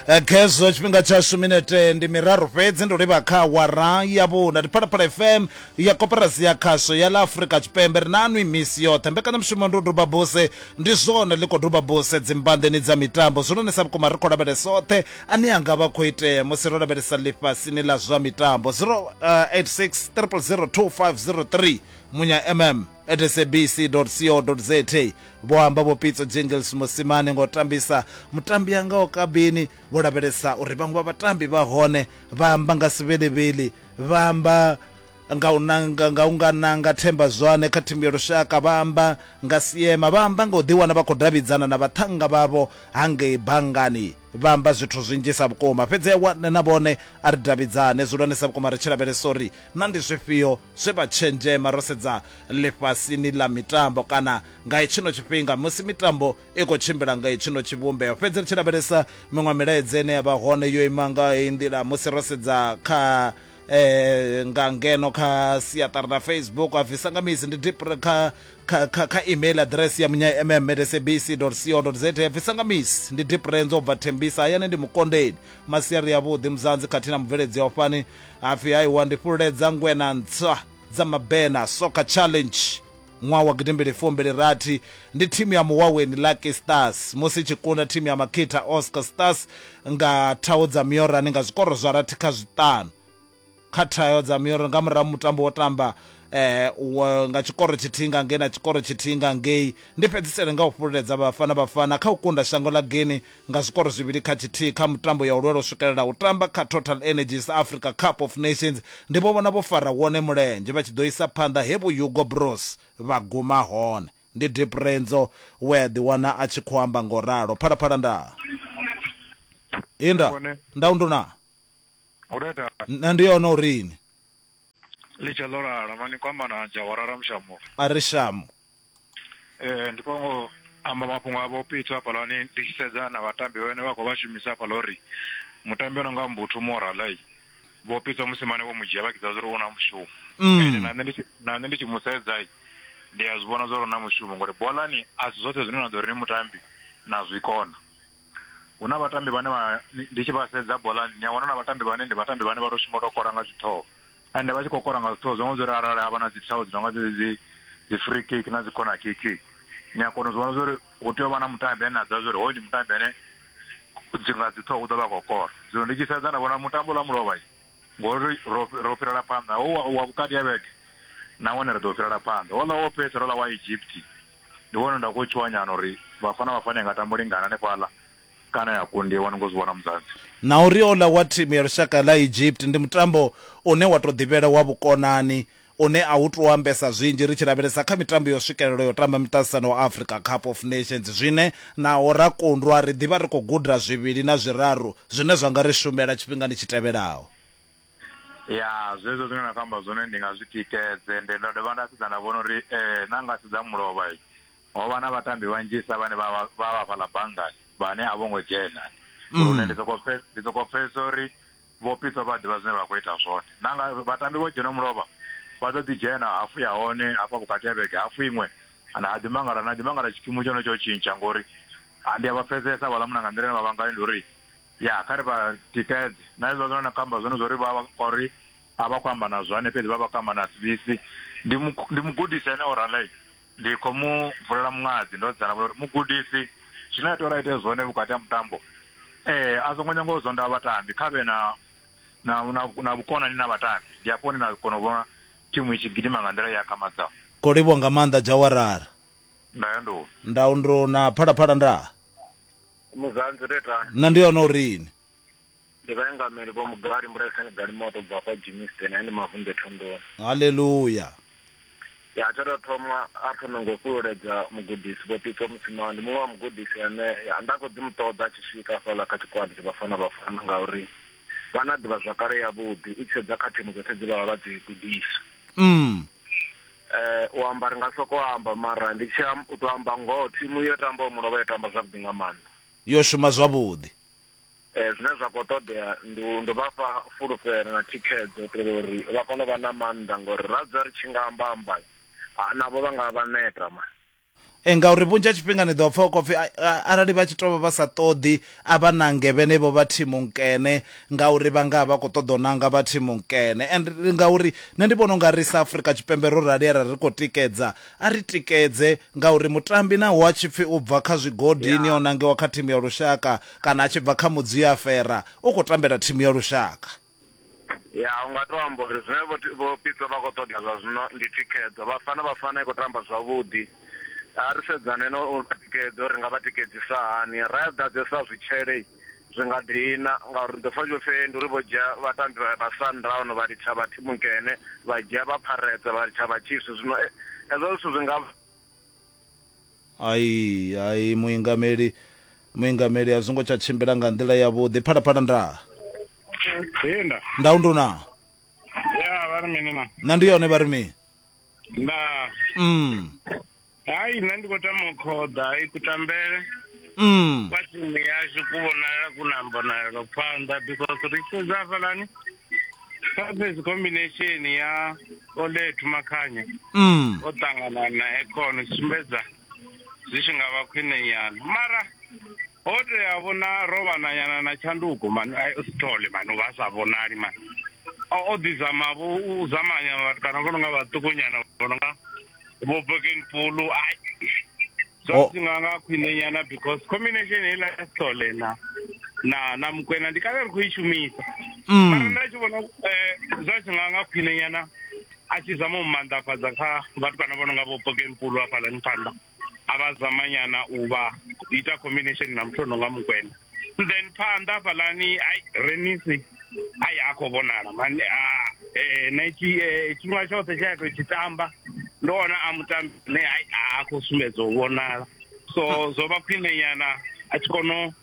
eh, khezwo tshifhinga tshashu minete ndi miraru fhedzi ndo livha kha wara ya vhuna ndi phalaphala fm ya koperasi ya khasho ya la afrika tshipembe ri na nwi misi yoṱhe mbekanyamushumo ndi u duba buse ndi zwone ḽi khou duba buse dzimbandeni dza mitambo zwi lonisa vhukuma ri khou lavhelesa oṱhe ane anga vha khou itea musi ro lavhelesa ḽifhasini ḽa zwa mitambo 086 eh, 3 munya mm at sabc co za vho amba vho pitso jingles musimane ngo tambisa mutambi anga o kabini vho lavhelesa uri vhaṅwe vha vhatambi vha hone vha amba nga sivhelivhili vha amba nga u nanga nga u nga nanga themba zwane kha thimu ya lushaka vha amba nga siema vha amba nga u ḓiwana vha khou davhidzana na vhaṱhannga vhavho hangei bangani Vha amba zwithu zwinzhisa vhukuma fhedzi a wane na vhone a ri davhidzane zwiulwanesa vhukuma ri tshi lavhelesa uri na ndi zwifhio zwe vha tshenzhema ro sedza ḽifhasini ḽa mitambo kana nga hetshino tshifhinga musi mitambo i khou tshimbila nga hetshino tshivhumbeo fhedzi ri tshi lavhelesa miṅwe milaedza ine ya vha hone yo ima nga heyi nḓila musi ro sedza kha eh nga ngeno kha siaṱari na facebook a bvisa nga misi ndi dipre kha kha kha kha email address ya munya mm at sabc co za ya bvisa nga misi ndi dipre ndzo bva thembisa hayani ndi mukondeni masiari yavhuḓi muzanzi khathihi na mubveledzi ya ufhani hapfi haiwa ndi fhululedza ngwena ntswa dza mabena soka challenge Ṅwaha wa gidimbili fumbili rathi, ndi thimu ya Muwaweni Lucky Stars musi i tshi kunda thimu ya Makita Oscar Stars nga thaho dza miorani nga zwikoro zwa rathi kha zwiṱanu kha thaho dza miorani nga murahu mutambo wo tamba eh, nga tshikoro tshithihi nga ngei na tshikoro tshithihi nga ngei. Ndi fhedzisele nga u fhululedza Bafana Bafana kha u kunda shango ḽa Guinea nga zwikoro zwivhili kha tshithihi kha mutambo ya u lwela u swikelela u tamba kha TotalEnergies Africa Cup of Nations, ndi vho vhona vho fara wone mulenzhe vha tshi ḓo isa phanḓa he vho Hugo Broos vha guma hone. Ndi Deep Renzo we a ḓiwana a tshi khou amba nga u ralo. Phalaphala nda inda, nda unduna. Nṋe ndi yone u ri ni. Ḽi tshe ḽo lala, no ni kwama na adzha, wa rara mushamulo. A ri shamu. Eh, ndi khou ngo amba mafhungo a vho pitso hafhaḽani ndi tshi sedza na vhatambi vhane vha khou vha shumisa hafhaḽa uri mutambi ono nga mbuthu moralai vho pitso musimane vho mu dzhia vha kidza zwauri u na mushumo Mm. ende na nṋe ndi tshi- na nṋe ndi tshi mu sedzai ndi a zwi vhona zwauri u na mushumo ngori bolani a si zwoṱhe zwine na ḓo ri ni mutambi na zwi kona hu na vhatambi vhane vha ndi tshi vha sedza bolani ni a wana na vhatambi vhane ndi vhatambi vhane vha to shuma to kora nga zwithoho ende vha tshi khou kora nga zwithoho zwo ngo zwori arali ha vha na dzi thawo dzi nonga dzedzi dzi dzi free kick na dzi corner kick ni a kona u zwi vhona zwori hu tea u vha na mutambi ane a ḓivha zwori hoyu ndi mutambi ane dzi nga dzi ṱhoho u ḓo vha khou kora zwino ndi tshi sedza nda vhona mutambo ḽa mulovha Ngori ro ro fhirela phanḓa ho wa, wa vhukati ha vhege nahone ri ḓo fhirela phanḓa. Houḽa wo fhedzisela houḽa wa Egypt ndi wone nda khou tshuwa nyana uri Vhafana Vhafana i nga tamba u lingana hanefhaḽa kana ya kundiwa ni khou zwi vhona Muzansi. Na uri houḽa wa thimu ya lushaka ḽa Egypt ndi mutambo une wa tou ḓivhela wa vhukonani une a u tou ambesa zwinzhi ri tshi lavhelesa kha mitambo yo swikelelwa ya u tamba miṱaṱisano wa Africa Cup of Nations zwine naho ra kundwa ri ḓivha ri khou guda zwivhili na zwiraru zwine zwa nga ri shumela tshifhingani tshi tevhelaho. Ya, zwezwo zwine na khou amba zwone ndi nga zwi tikedze. Nde nda dovha nda sedza nda vhona uri na nga sedza mulovha ho vha na vhatambi vhanzhisa vhane vha vha vha fhaḽa banngani vhane a vho ngo dzhena lune ndi sokou pfhe, ndi sokou pfhesesa uri Vho Pitso vha a ḓivha zwine vha khou ita zwone. Na nga vhatambi vho dzhena mulovha, vha ḓo ḓi dzhena hafu ya hone hafha vhukati ha vhege, hafu iṅwe na ha ḓi mangala, na ḓi mangala tshikimu tsha hone tsho tshintsha ngori ndi a vha pfesesa havhaḽa munna nga nḓila ine vha vha ngayo ndi uri ya kha ri vha tikedze. Na hezwiḽa zwine na khou amba zwone zwa uri vha vha kha uri a vha khou amba na zwane fhedzi vha vha khou amba na Sibisi, ndi mugudisi ane o ralei. Ndi khou mu vulela muṅadzi ndo dzala vhuloi uri, Mugudisi, zwine a tea uri a ite zwone vhukati ha mutambo, ee, a songo nyanga u zondha vhatambi, kha vhe na, na, na, na vhukonani na vhatambi. Ndi hafho hune na kona u vhona thimu i tshi gidima nga nḓila i akhamadzaho. Khou livhuwa nga maanḓa Djawarar. Ndayandou. Ndau ndou na Phalaphala ndaa. Muzanzi ri ri tani. Nṋa ndi hone uri ni. Ndi vhaingameli vho Mugari Mbulaisani Galimoto u bva kwa Germiston he ndi Mavunḓe Thondoni. Haleluya! Ya, tsha tou thoma a pfuna nga u fhululedza mugudisi Vho Pitso Musimane. Ndi muṅwe wa mugudisi ane ya, nda khou ḓi mu ṱoḓa a tshi swika hafhaḽa kha tshigwada tsha Vhafana Bafana ngauri vha na ḓivhazwakale yavhuḓi u tshi sedza kha thimu dzoṱhe dze vha vha vha dzi gudisa. Mm. Eh, u amba ri nga sokou amba mara ndi tshi am- u tou amba ngoho thimu yo tambaho mulovha yo tamba zwavhuḓi nga maanḓa. Yo shuma zwavhuḓi. Zwine zwa khou ṱoḓea ndi u ndi vha fha fulufhelo na thikhedzo u itela uri vha kone u vha na maanḓa ngori ra dzula ri tshi nga amba amba navho vha nga vha neta ma. Ee ngauri vhunzhi ha tshifhinga ni ḓo pfha hu khou pfhi arali vha tshi tou vha vha sa ṱoḓi a vha nange vhenevho vha thimu nkene ngauri vha nga vha khou ṱoḓa u nanga vha thimu nkene and ngauri nṋe ndi vhona u nga ri sa Afrika Tshipembe ro rali arali ri khou tikedza a ri tikedze ngauri mutambi naho a tshi pfhi u bva kha zwigodini o nangiwa kha thimu ya lushaka Kana a tshi bva kha mudzi ya fera u khou tambela thimu ya lushaka. Ya, u nga tou amba uri zwine Vho Vho Pitso vha khou ṱoḓa zwa zwino ndi thikhedzo. Bafana Bafana i khou tamba zwavhuḓi. A ri sedzane na u vha tikedza uri ri nga vha tikedzisa hani. Ra ḓadzesa zwitshele zwi nga dina ngauri ri ḓo pfa hu tshi khou pfi ndi uri vho dzhia vhatambi vha vha Sundown vha litsha vha thimu nkene, vha dzhia vha Pirates vha litsha vha Chiefs, zwino hezwo zwithu zwi nga. Ai ai muingameli muingameli a zwo ngo tsha tshimbila nga nḓila yavhuḓi phalaphala nda Ee nda. nda undu na Ya vha ri mini na. na ndi yone vha ri mini Nda. mm Hai nṋe ndi khou tama u khoḓa hai kutambele mm kwa timu yashu ku vhonala ku na mbonalelo phanḓa because ri tshi sedza hafhaḽani surface combination ya olethu makhanya mm. o ṱangana na econo sumbedza zwi tshi nga vha khwine nyana mara ho tea vhona ro vhananyana na tshanduko mani sithole mani vha sa vhonali mani o ḓizama vho u zamanya vhathu kana vho no nga vhaṱukunyana vho no nga vho bokeni pulu ai zwa oh. zwi nga nga khwine nyana because combination heiḽa ya sole na na na mukwena ndi kale ri khou i shumisa mm. mara nda tshi vhona eh, zwa zwi nga nga khwine nyana a tshi zama u maanḓafhadza kha vhathu vhana vho no nga vho pokenpulu hafhaḽani phanḓa a vha zama nyana u vha ita combination na muthu o no nga mukwena then phanḓa hafhaḽani ai renisi ai a khou vhonala mani ah, eh, na tshi eh, tshifhinga tshoṱhe tsha ya tou tshi tamba ndo wana a mutambi ne ai a khou sumbedza u vhonala so zwo vha khwiṋenyana a tshi kona u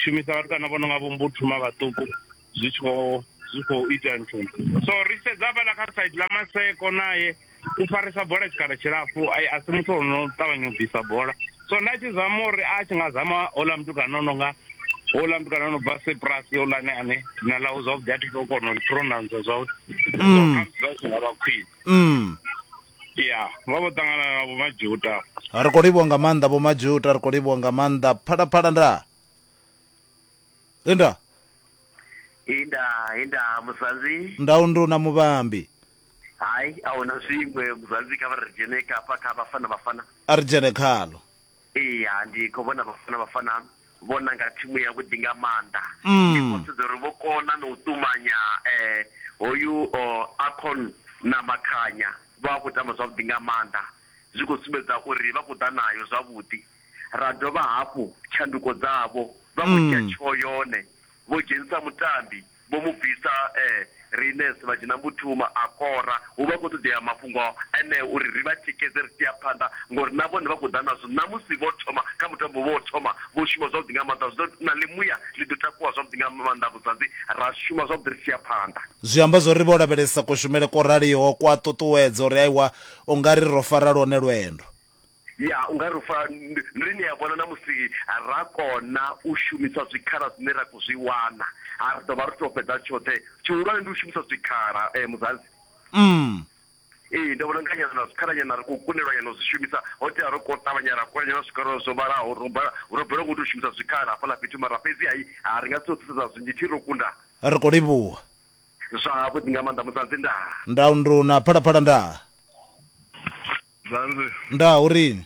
shumisa vhatukana vho no nga vho mbuthuma vhaṱuku zwi tshi khou zwi khou ita nthu so ri sedza vhala kha side ḽa maseko naye u farisa bola tshikhala tshilapfu a si muthu ono ṱavhanya u bvisa bola so nda tshi zama uri a tshi nga zama ola mutukana ono nga ola mutukana ono bva sepras olane ane na ḽau zwavhuḓi a thi to kona u pronounce zwavhuḓi mm. zwa zwi nga vha khwine mm. ya vha vho ṱangana na vho majuta ri khou livhuwa nga maanḓa vho majuta ri khou livhuwa nga maanḓa phalaphala ndaa he nda he nda he nda muzanzi nda unduna muvhambi hai a hu na zwiṅwe muzanzi kha vha ri dzhene kafha kha vhafana vhafana a ri dzhene khalo iya ndi khou vhona vhafana vhafana vho nanga thimu yavhuḓi nga maanḓa mm. ndi khou sedza uri vho kona na u ṱumanya um hoyu acon na makhanya vha vha khou tamba zwavhuḓi nga maanḓa zwi khou sumbedza uri vha khou ḓa nayo zwavhuḓi ra dovha hafhu tshanduko dzavho vha vho dzhia tsheo yone vho dzhenisa mutambi vho mu bvisa Rinus vha dzhena Mbuthuma a kora hu vha hu khou ṱoḓea mafhungo eneo uri ri vha tikedze ri tshi ya phanḓa ngori na vhone vha khou ḓa nazwo ṋamusi vho thoma kha mutambo vho thoma vho shuma zwavhuḓi nga maanḓa zwi ḓo na ḽimuya ḽi ḓo takuwa zwavhuḓi nga maanḓa Vhudzadzi ra shuma zwavhuḓi ri tshi ya phanḓa. Zwi amba zwo ri vho lavhelesa kushumele kwo raliho kwa ṱuṱuwedza uri aiwa u nga ri ro fara lwone lwendo. Ya, u nga ri u fa. Ri ni a vhona na musi ra kona u shumisa zwikhala zwine ra khou zwi wana, ha ri ḓo vha ri tou fhedza tshoṱhe. Tshihulwane ndi u shumisa zwikhala, Muzansi. Umm. Ee, ndi vhona u nga nyana na zwikhalanyana ri khou kundelwa nyana u zwi shumisa, ho tea ro ko ṱavhanya ra kona nyana zwikhala zwo vhalaho. Ro bala, ro balelwa nga u tou shumisa zwikhala hafhaḽa fhethu, mara fhedzi hai, ha ri nga si tou thusedza zwinzhi, thi ro kunda. Ri khou livhuwa. Zwavhuḓi nga maanḓa, Muzansi. Ndaa. Ndau, Nduna, Phalaphala, Ndaa. Zwanzi. Nda urini?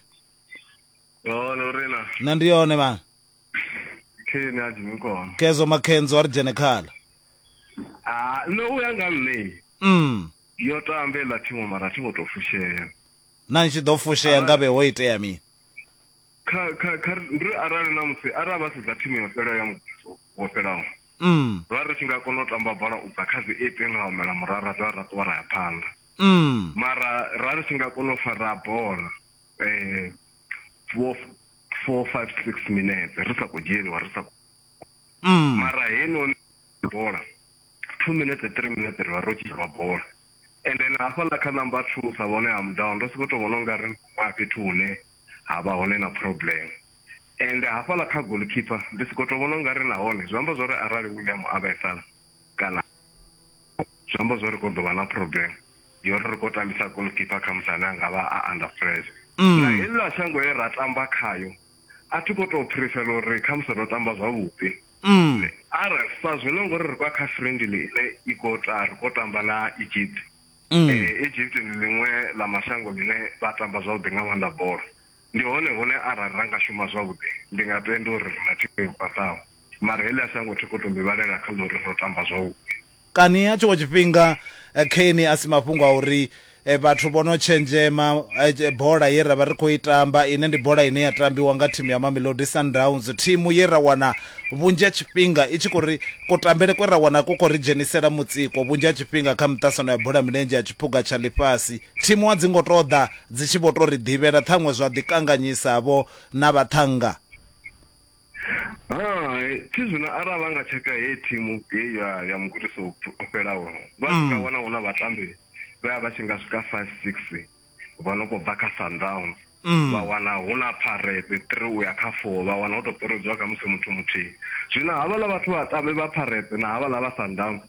Yona urina. Na ndi yone bana. Khini athi ngikona. Kezo makhenzo ari dzhene khala. Ah, no uya nga nne. Mm. Yo tambe la thimu mara thi ngo to fushea. Na nshi do fushea ngabe ho itea mini? Kha kha kha ndri arali na musi ara vha sedza thimu yo fhela ya muvhuso wo fhelaho. Mm. Vha ri tshi nga kona u tamba bola u bva kha dzi 8 nga humela murara dza ra ṱuwa ra ya phanḓa. mm. mara ra ri si nga kona u fara bola um four four five six minutes ri sa khou dzhieliwa ri sa mm. mara heinoni bola two minutes three minutes ri vha ro tshilwa bola and then hafhaḽa kha number two sa vhone ha mudown ndo sokou tou vhona u nga ri a fhethu hune ha vha hone na problem and hafhaḽa kha goalkeeper ndi sokou tou vhona u nga ri nahone zwi amba zwa uri arali william a vhaisala kana zwi amba zwo ri kho ḓo vha na problem yo ri ri kho tambisa goalkeeper kha musi ane a nga vha a under pressure mm. na heḽa shango ye ra tamba khayo a thi khou tou prefer uri kha musi ro tamba zwavhuḓi mm. arali sa zwino ngori ri kwa kha friendly ine i khou ta ri khou tamba na egypt mm. eh, egypt ndi ḽiṅwe ḽa mashango ḽine vha tamba zwavhuḓi nga maanḓa bola Ndi hone hune arali ra nga shuma zwavhuḓi, ndi nga tenda uri ri na thimu yo khwaṱhaho. Mara Elias ha ngo thikha u tou ḓivhalela kha ḽa uri ro tamba zwavhuḓi. Kani nga tshiṅwe tshifhinga Kane a si mafhungo a uri vhathu vho no tshenzhema bola ye ra vha ri khou i tamba, ine ndi bola ine ya tambiwa nga thimu ya Mamelodi Sundowns, thimu ye ra wana vhunzhi ha tshifhinga i tshi khou ri, kutambele kwe ra wana ku khou ri dzhenisela mutsiko vhunzhi ha tshifhinga kha miṱasano ya bola ya milenzhe ya tshiphuga tsha ḽifhasi. Thimu a dzi ngo tou ḓa Dzi tshi vho tou ri ḓivhela, ṱhaṅwe zwa ḓi kanganyisa-vho na vhaṱhannga. Hai, thi zwino arali vha nga tsheka heyi thimu heyi ya ya mugudisi o fhelaho, vha tshi nga wana hu na vhatambi vhe a vha tshi nga swika five six vha no khou bva kha Sundowns, vha wana hu na Pirates three u ya kha four, vha wana ho tou ṱuredziwa khamusi muthu muthihi. Zwino havhaḽa vhathu vhatambi vha Pirates na havhaḽa vha Sundowns,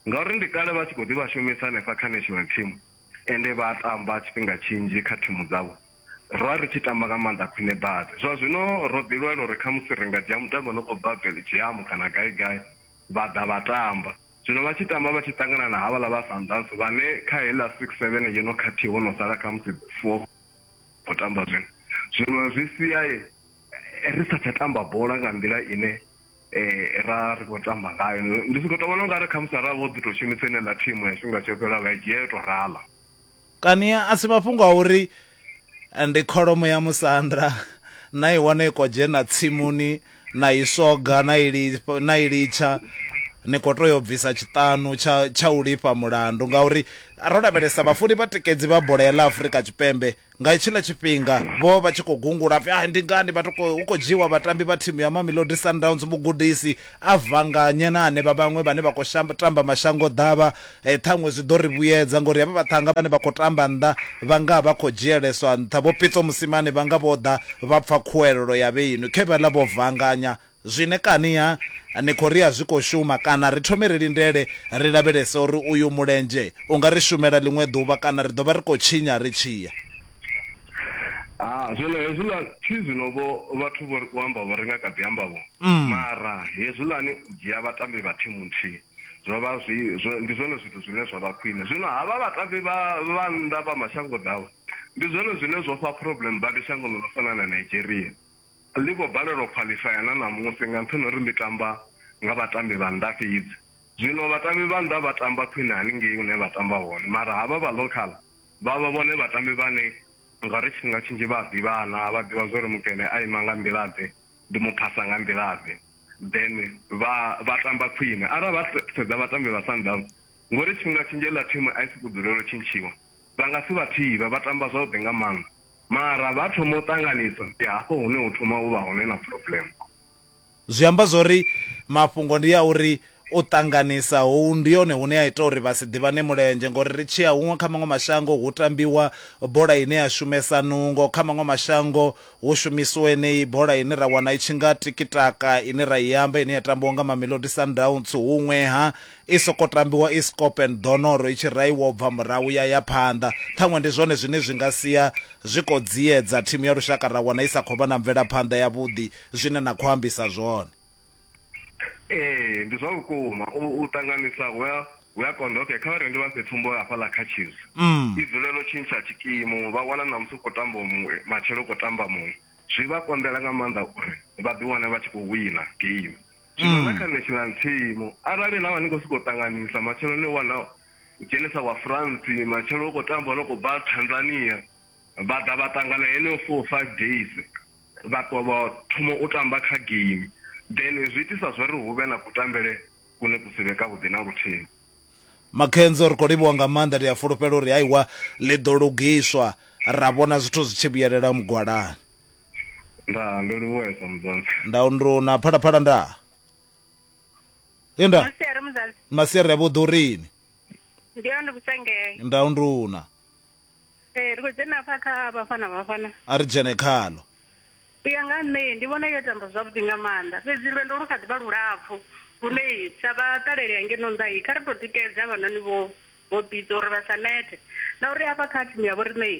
ngauri ndi kale vha tshi khou ḓi vha shumisa hanefha kha national team, Ende vha a tamba tshifhinga tshinzhi kha thimu dzavho. Ro vha ri tshi tamba nga maanḓa khwine badi. Zwa zwino ro ḓilwela uri khamusi ri nga dzhia mutambi o no khou bva Belgium kana gai-gai vha ḓa vha tamba. Zwino vha tshi tamba vha tshi ṱangana na havhaḽa vha Sundowns vhane kha heiḽa six, seven yo no khathihi ho no sala khamusi four khou tamba zwino. Zwino zwi sia ri sa tsha tamba bola nga nḓila ine. eh, ra ri khou tamba ngayo ndi si khou to vhona ungari khamusi arali vho ḓi tou shumisa ine ḽa thimu ya tshifhinga tsho fhela vha i dzhia yo tou rala kani a si mafhungo a uri eh, ndi kholomo ya musanda na i wana i khou dzhena tsimuni na i soga na i li- na i litsha ni khou tea u bvisa tshiṱanu tsha tsha u lifha mulandu ngauri ro lavhelesa vhafuni vhatikedzi vha bola ya ḽa afurika tshipembe Nga hetshiḽa tshifhinga, vho vha tshi khou gungula a pfi, Ai, ndi ngani vha khou, hu khou dzhiiwa vhatambi vha thimu ya Mamelodi Sundowns? Mugudisi, a vhanganye na hanevha vhaṅwe vhane vha khou shamba, tamba mashangoḓavha. E, ṱhaṅwe zwi ḓo ri vhuyedza, ngauri havha vhaṱhannga vhane vha khou tamba nnḓa vha nga vha khou dzhieleswa nṱha. Vho Pitso Mosimane vha nga vho ḓa vha pfa khuwelelo ya vheiṅwi, khevheḽa vho vhanganya Zwine kani ha Nikoria zwi khou shuma, kana ri thome ri lindele ri lavhelese uri uyu mulenzhe u nga ri shumela ḽiṅwe ḓuvha kana ri ḓo vha ri khou tshinya ri tshi ya? Ha, zwino hezwiḽa, thi zwino-vho, vhathu vho ri u amba vho ri nga kha ḓi amba-vho, mara hezwiḽani u dzhia vhatambi vha thimu nthihi zwo vha zwi, zwo, ndi zwone zwithu zwine zwa vha khwine. Zwino havha vhatambi vha, vha nnḓa vha mashangoḓavha, ndi zwone zwine zwo fha problem badi shangoni ḽo fana na Nigeria. Ḽi khou balelwa u khwaḽifaya na ṋamusi nga nṱhani ha uri ḽi tamba nga vhatambi vha nnḓa fhedzi. Zwino vhatambi vha nnḓa vha tamba khwine haningei hune vha tamba hone mara havha vha local vha vha vhone vhatambi vhane nga uri tshifhinga tshinzhi vha a ḓivhana, vha ḓivha zwa uri mukene a ima nga nḓila-ḓe, ndi mu phasa nga nḓila-ḓe then vha vha tamba khwine. Arali vha sedza vhatambi vha Sundowns nga uri tshifhinga tshinzhi heiḽa thimu a i sokou dzulela u tshintshiwa vha nga si vha thivhe, vha tamba zwavhuḓi nga maanḓa. Mara vha thoma u ṱanganisa, ndi hafho hune hu thoma u vha hone na problem. Zwi amba zwa uri mafhungo ndi a uri u ṱanganisa ho ndi hone hune ha ita uri vha si ḓivhane mulenzhe ngori ri tshi ya huṅwe kha maṅwe mashango hu tambiwa bola ine ya shumesa nungo, kha maṅwe mashango hu shumisiwa yeneyi bola ine ra wana i tshi nga tikitaka ine ra i amba ine ya tambiwa nga Mamelodi Sundowns, huṅweha I sokou tambiwa i skopen, ḓonoro i tshi raiwa u bva murahu ya ya phanḓa. Ṱhaṅwe ndi zwone zwine zwi nga sia zwi khou dziedza thimu ya lushaka ra wana i sa khou vha na mvelaphanḓa yavhuḓi, zwine na khou ambisa zwone. Ee, ndi zwa vhukuma. U, u ṱanganisa hu a, hu a konḓa. Okay, kha vha ri ndi vha fhe tsumbo hafhaḽa kha Chiefs. I dzulela u tshintsha tshikimu, vha wana ṋamusi hu khou tambaho muṅwe, matshelo hu khou tamba muṅwe. Zwi vha konḓela nga maanḓa uri vha ḓi wane vha tshi khou wina game. zwino na kha national team arali na vha ni khou sokou ṱanganisa matshelo ni wana u dzhenisa wa france matshelo u khou tamba no khou bva tanzania vha ḓa vha ṱangana heneyo four five days vha ṱwa vha thoma u tamba kha game then zwi itisa zwa ri hu vhe na kutambele kune ku si vhe ka vhuḓi na luthihi makhenzo ri khou livhuwa nga maanḓa ndi a fulufhela uri haiwa ḽi ḓo lugiswa ra vhona zwithu zwi tshi vhuyelela mugwalani Ndaa, ndo livhuwesa muzansi. Ndau ndru na phalaphala ndaa. Linda. Masiari muzansi. Masiari ya vhuḓurini. Ndi yone vhusengee. Ndau nduna. Ee, eh, ri khou dzhena afha kha Bafana Bafana. A ri dzhene khalo. U ya nga nṋe ndi vhona yo tamba zwavhuḓi nga maanḓa fhedzi lwendo lu kha ḓi vha lulapfhu lune sa vhaṱaleli hangeno nnḓayi kha ri tou tikedza vhanoni vho vho bidza uri vha sa nete na uri afha kha thimu ya vho riṋei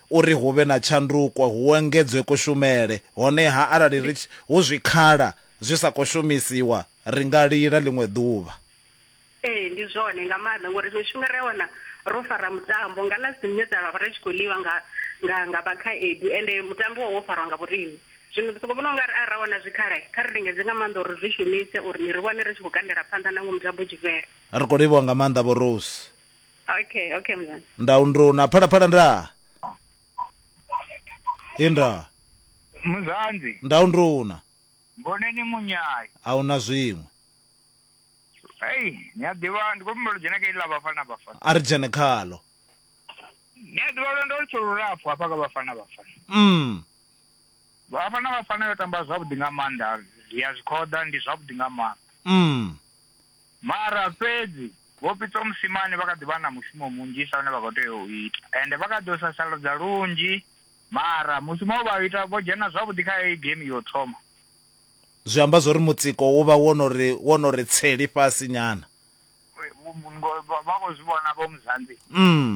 uri hu vhe na tshanduko, hu engedzwe kushumele. Honeha arali ri tshi hu zwikhala zwi sa khou shumisiwa, ri nga lila ḽiṅwe ḓuvha. Ee, ndi zwone nga maanḓa ngori zwiṅwe zwifhinga ri a wana ro fara mutambo nga ḽa dzine dza vha ri tshi khou ḽiwa nga nga nga vhakhaedu ende mutambo wo farwa nga vhoriṋe. Zwino ndi sokou vhona u nga ri arali ra wana zwikhala, kha ri lingedze nga maanḓa uri ri zwi shumise uri ni ri wane ri tshi khou kandela phanḓa nangwe mutambo u tshi fhela. Ri khou livhuwa nga maanḓa Vho Rose. Okay, okay mzansi. ndawo ndrona phalaphala nda inda muzanzi ndawo ndrona mboneni munyayi a hu na zwiṅwe eyi ni a ḓivha ndi khou humbela u dzhena kha iḽi ḽa vhafana vhafana a ri dzhene khalo ni a ḓivha lwendo lutsho lulapfu hafha kha vhafana vhafana mm. vhafana vhafana yo tamba zwavhuḓi nga maanḓa ya zwikhoḓa ndi zwavhuḓi nga maanḓa mm. Mara fhedzi Vho Pitso Mosimane vha kha ḓi vha na mushumo munzhisa une vha khou tea u ita ende vha kha ḓi u sasaladza lunzhi mara mushumo we vha u ita vho dzhena zwavhuḓi kha heyi geimi ya u thoma. Zwi amba zwo ri mutsiko wo vha wo no ri wo no ri tsee lifhasi nyana. Ngo vha vha khou zwi vhona Vho Muzanzi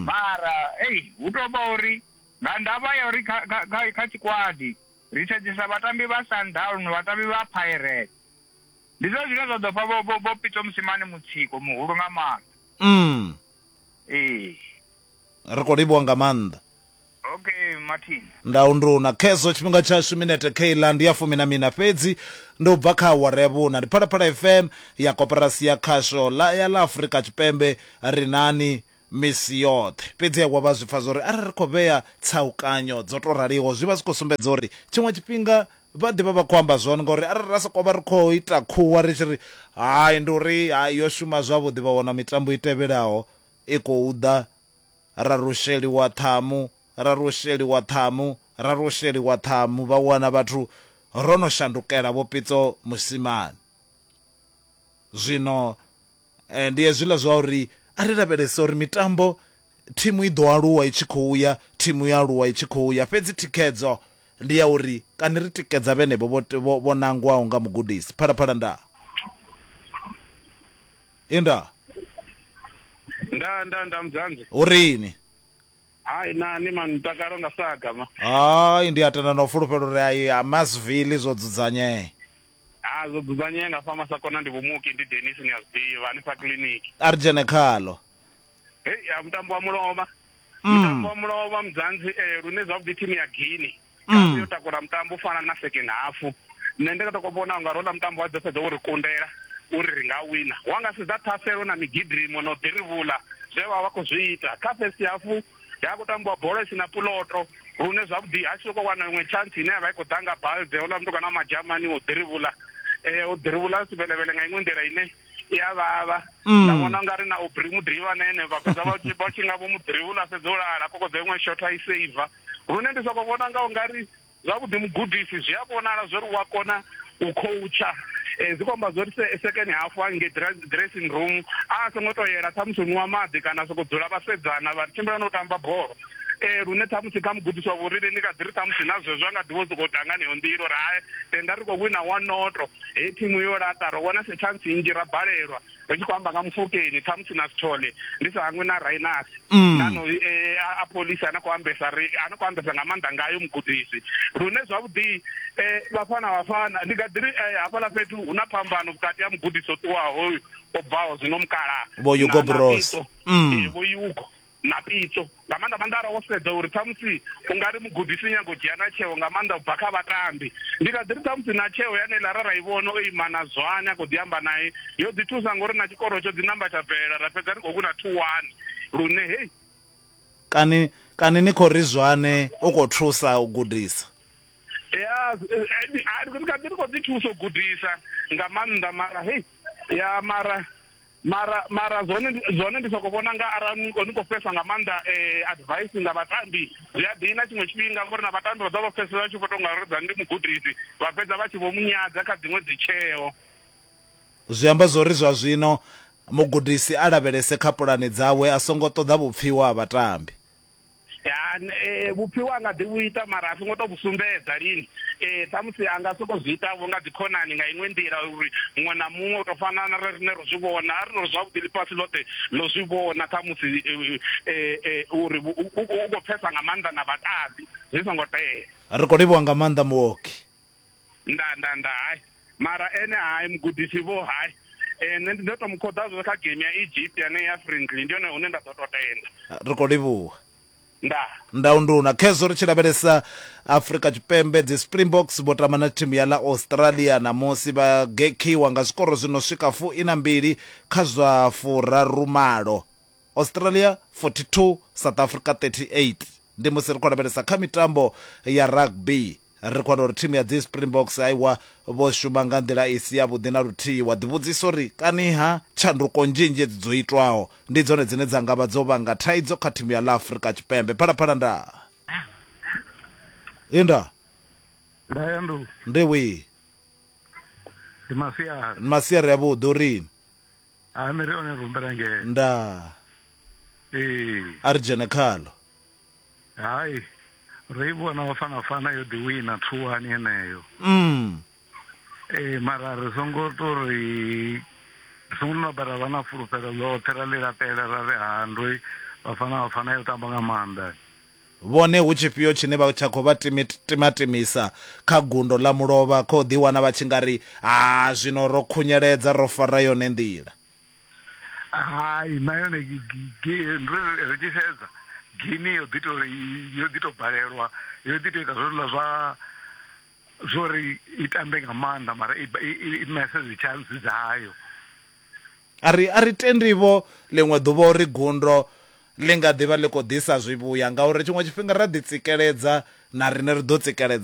mara ei hu tou vha uri nga ndavha ya uri kha kha kha tshikwadi ri sedzesa vhatambi vha Sundown, vhatambi vha Pirates Ndi zwone zwine zwa ḓo fha vho vho vho Pito Musimane mutsiko muhulu nga maanḓa. Mm. Ee. Ri khou livhuwa nga maanḓa. Okay Martin. Ndau ndu na khezwo tshifhinga tshashu minete kheiḽa ndi ya fumi na mina fhedzi ndi u bva kha awara ya vhuna ndi Phalaphala FM ya koporasi ya khasho ḽa ya ḽa Afrika Tshipembe ri nani misi yoṱhe. Fhedzi Yehova a zwi pfa zwauri arali ri khou vhea tsaukanyo dzo tou raliho, zwi vha zwi khou sumbedza uri tshiṅwe tshifhinga vha ḓi vha vha khou amba zwone. Ngauri arali ra sokou vha ri khou ita khuwa ri tshi ri, Hai, ndi uri hai, yo shuma zwavhuḓi, vha wana mitambo i tevhelaho i khou ḓa, ra rusheliwa ṱhamu, ra rusheliwa ṱhamu, ra rusheliwa ṱhamu, vha wana vhathu ro no shandukela Vho Pitso Mosimane zwino. Ndi hezwiḽa zwa uri a ri lavhelese uri mitambo thimu i ḓo aluwa i tshi khou ya, thimu i a aluwa i tshi khou ya, fhedzi thikhedzo ndi ya uri kani ri tikedza vhenevho vho vho nangwaho nga mugudisi. Phalaphala nda i nda. Nda nda nda Mudzanzi. Hu rini? Hai na ni man mutakalo nga saga ma. Hai ndi a tenda na u fulufhela uri hai ha Massville zwo dzudzanyea. ha zwo dzudzanyea nga fama sa kona ndi vhumuki ndi denis ni a zwi ḓivha hanefha kiliniki a ri dzhene khalo hei ya mutambo wa mulovha Mm. mutambo wa mulovha mudzanzi eh, lune zwavhuḓi thimu ya guini Mm. yo takula mutambo u fana na second half nṋe ndi nga to vhona unga rola mutambo wa dzo fhedza wo ri kundela uri ri nga wina wa nga sedza thaselo na migidimo na u ḓirivhula zwe vha vha khou zwi ita kha first half he ha khou tambiwa bola i si na puloto lune zwavhuḓi a tshi sokou wana iṅwe tshantsi ine ya vha i khou ḓa nga balde houḽa mutukana wa madzhamani o ḓirivhula um o ḓirivhula a si vhelevhele nga iṅwe nḓila ine i a vhavha nda vhona u nga ri na u bri muḓirivha na ene vha fhedza vha tshi nga vho muḓirivhula a fhedza u lala kokodzo iṅwe shotha i seiva lune ndi sokou vhona nga u nga ri Zwavhuḓi mugudisi, zwi a vhonala zwa uri u a kona u khoutsha. Zwi khou amba zwa uri se, sekeni hafhu hangei dra, dressing room a a songo tou yela ṱhamusi u nwa maḓi kana a sokou dzula vhasedzana vha tshimbila na u tamba bola. Ee, lune ṱhamusi kha mugudisi wa vhurine ndi nga ḓi ri ṱhamusi na zwezwo a nga ḓi vha o sokou ḓa nga heneyo nḓila uri hai, tenda ri khou wina one noto, hei thimu yo laṱa, ro wana se tshantsi nnzhi ra balelwa. ri tshi khou amba nga mufokeni ṱhamusi na sithole ndi sa hangwe na rainasi mm. nano eh, a polisi ana khou ambesa ri ana khou ambesa nga maanḓa ngayo mugudisi lune zwavhuḓi eh, vhafana vhafana ndi nga ḓiri eh, hafhaḽa fhethu hu na phambano vhukati ha mugudisi o ṱuwaho hoyu o bvaho zwino mukala vho yugo bros mm. vho yugo na pitso nga maanḓa maanḓa ara wo sedza uri ṱhamusi u nga ri mugudisi nyago u dzhia na tsheo nga maanḓa u bva kha vhatambi ndi kha ḓi ri ṱhamusi na tsheo yane ḽa ra ra i vhona o ima na zwane a khou ḓi amba naye yo ḓi thusa ngori na tshikoro tsho ḓi namba tsha bvelela ra fhedza ri khou wina two one lune hei kani kani ni khou ri zwane u khou thusa u gudisa ya ri kha ḓi ri khou ḓi thusa u gudisa nga maanḓa mara hei ya mara mara mara zwone zwone ndi soko vhona nga arali ni kho ni kho fesa nga maanḓa eh, advice nga vhatambi zwi a dina tshiṅwe tshifhinga ngori na vhatambi vha ḓo vha fesa vha tshi vho tonga ro dzani ndi mugudisi vha fhedza vha tshi vho munyadza kha dziṅwe dzitsheo zwi amba zwori zwa zwino mugudisi a lavhelese kha pulane dzawe a songo ṱoḓa vhupfiwa ha vhatambi Eh, vhupfiwa anga ḓi vhuita mara a songo to vhu sumbedza lini eh, ṱhamusi a nga soko zwi itavho nga dzikhonani nga iṅwe nḓila uri muṅwe na muṅwe u to fana na rine ro zwi vhona a ri no zwavhuḓi ḽifhasi ḽoṱhe ḽo zwi vhona ṱhamusi eh, uri u khou pfesa nga maanḓa na vhatambi zwi songo tea ri khou livhuwa nga maanḓa muoki nda nda nda hai mara ene hai mugudisi vho hai eh, nṋe ndi ḓo to mu khoḓa zwo kha game ya egypt yane ya friendly ndi yone hune nda ḓo to tenda ri khou livhuwa nda ndau nduna khezwo ri tshi lavhelesa afrika tshipembe dzi springboks vho tama na thimu ya ḽa australia ṋamusi vha gekhiwa nga zwikoro zwi no swika fu ina mbili kha zwa furarumalo Australia 42, South Africa 38. Ndi musi ri khou lavhelesa kha mitambo ya rugby, ri khou wana uri thimu ya dzi Springboks aiwa vho shuma nga nḓila i si yavhuḓi na luthihi. Wa ḓivhudzisa uri kaniha tshanduko nzhinzhi edzi dzo itwaho ndi dzone dzine dza nga vha dzo vhanga thaidzo kha thimu ya ḽa Afrika Tshipembe. Phalaphala ndaa! Inda! Nda ya ndu. Ndi wii! Ndi masiari. Ndi masiari avhuḓi, u ri? ha mi ri one rumbela ngee ndaa ee a ri dzhene khalo hai ro i vhona bafana fana yo ḓi wina thuwani heneyo mm ee mara ri songo to ri ri songo no bara vha na fulufhelo ḽoṱhe ra ḽi lapela ra ri ha ndoi bafana bafana yo tamba nga maanḓa Vhone hu tshifhio tshine vha tsha khou vha timatimisa kha gundo ḽa mulovha khou ḓiwana vha tshi nga ri, Ha, zwino ro khunyeledza, ro fara yone nḓila? Hai, na yone ri tshi sedza, Gini yo ḓi tou yo ḓi tou balelwa, yo ḓi tou ita zwezwiḽa zwa zwo ri i tambe nga maanḓa mara i i mese dzi tshantsi dzayo. A ri, A ri tendi-vho ḽiṅwe ḓuvha uri gundo ḽi nga ḓi vha ḽi khou ḓisa zwivhuya, ngauri tshiṅwe tshifhinga ra ḓitsikeledza, na riṋe ri ḓo tsikeledze-a.